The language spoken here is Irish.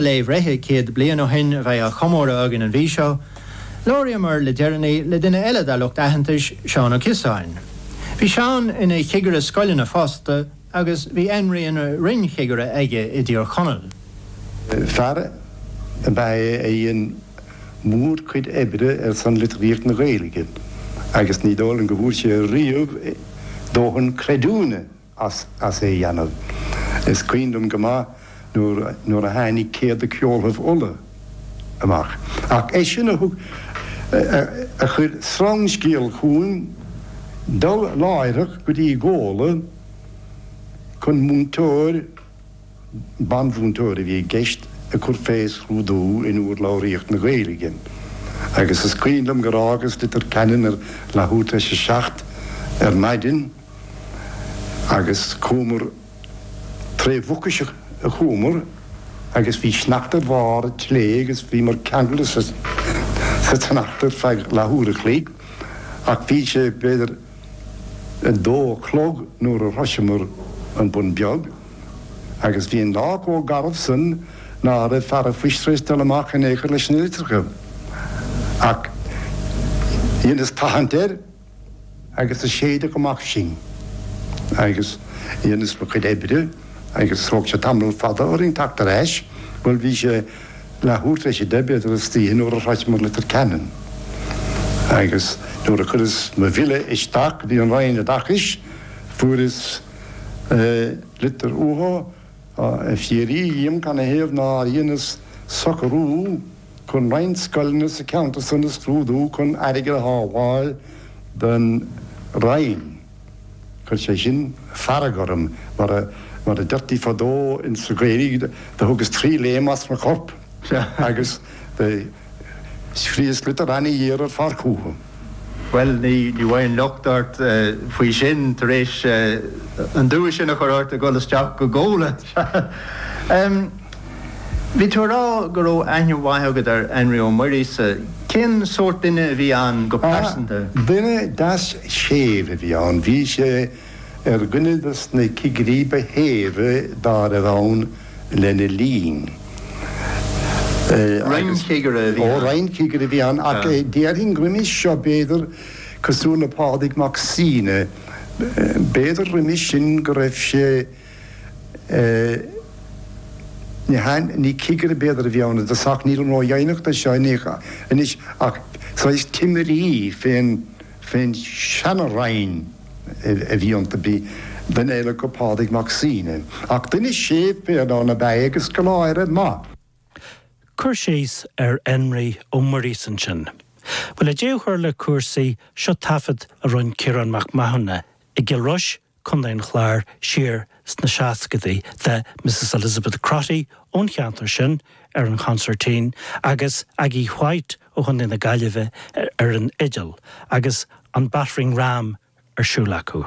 Lae bhreithe céad bliain ó shin a bheidh á chomóradh againn an mhí seo. Labhraíomar le deireanaí le duine eile dár lucht aitheantais, Seán Ó Ciosáin. Bhí Seán ina chigire scoileanna fosta agus bhí Énrí ina roinn-chigire aige i dTír Chonaill. Fear ab ea é a dhein mórchuid oibre ar son litríocht na Gaeilge agus ní dóigh liom go bhfuair sé riamh dóthain creidiúna. as é a dheanamh. Is cuimhin liom go maith nuair a tháinig Céad de Cheoltaibh Uladh amach, ach eisean a thug a chuir sreangscéal chugham dul láithreach go dtí Gola chun múinteoir, banmhúinteoir a bhí i gceist, a chur fé scrúdú in úrlabhraíocht na Gaeilge. Agus is cuimhin liom gur fhágas Leitir Ceanainn ar leathuair tar éis a seacht ar maidin, agus chuamar tré Mhucais a chuamar agus bhí sneachta ar bharr an tslé' agus bhíomar ceangailte sa tsneachta ar feadh leathuair a chloig ach bhí sé b'fhéidir a dó a chlog nuair a shroiseamar an Bun Beag agus bhí an lá chomh garbh san ná raibh fear an phoist tar éis dul amach in aon chor leis na litreacha ach dheineas tathaint air. agus a séideadh amach sinn agus dheineas mo chuid oibre agus thóg sé tamall fada orainn teacht ar ais, bhuel bhí sé leath uair tar éis a deich b'fhéidir istoíche nuair a shroicheamar Leitir Ceanainn agus nuair a chuireas mo bhille isteach go dtí an Roinn Oideachais fuaireas litir uathu ag fiafraí dhíom canathaobh nár dheineas socrú Chun roinnt scoileanna sa cheantar san a scrúdú chun airgead a shábháil don Roinn, chuir sé sin fearg orm, mar a deirtí fadó insa Ghaeilg, do thugas trí léim as mo chorp agus do scríos litir ana-ghéar ar fad chucu. Bhuel, ní bhfaighinn locht ort faoi sin tar éis an dua sin a chur ort ag dhul isteach go Gola! Bhí tú a rá go raibh aithne mhaith agat ar Énrí Ó Muirgheasa. Cén sórt duine a bhí ann go pearsanta? Duine deas séimh a bhí ann. Bhí sé ar dhuine de na cigirí ba shéimhe dá raibh ann lena linn agus. Roinn-chigire a bhí ann? Ó, roinn-chigire a bhí ann ach déarfainn roimis seo, b'fhéidir, cosúil le Pádraig Mac Suibhne, b'fhéidir roimis sin go raibh sé. Eh, ní cigire b'fhéidir a bhí ann ar dtús ach, nílim ró-dheimhneach de seo anois ach saghas timirí fén seana-roinn a bhí iontu, bhí duine eile acu, Pádraig Mac Suibhne, ach duine séimh fir ann ab ea é agus scoláire maith. Cur síos ar Énrí Ó Muirgheasa ansin. Bhuel, le deireadh a chur le cúrsaí, seo taifead a rinne Ciarán Mac Mathúna i gCill Rois Contae an Chláir, siar sna seascadaí, de Mrs Elizabeth Crotty ón cheantar sin ar an chonsairtín agus Aggie Whyte ó Chontae na Gaillimhe ar an fhidil agus an battering ram ar siúl acu.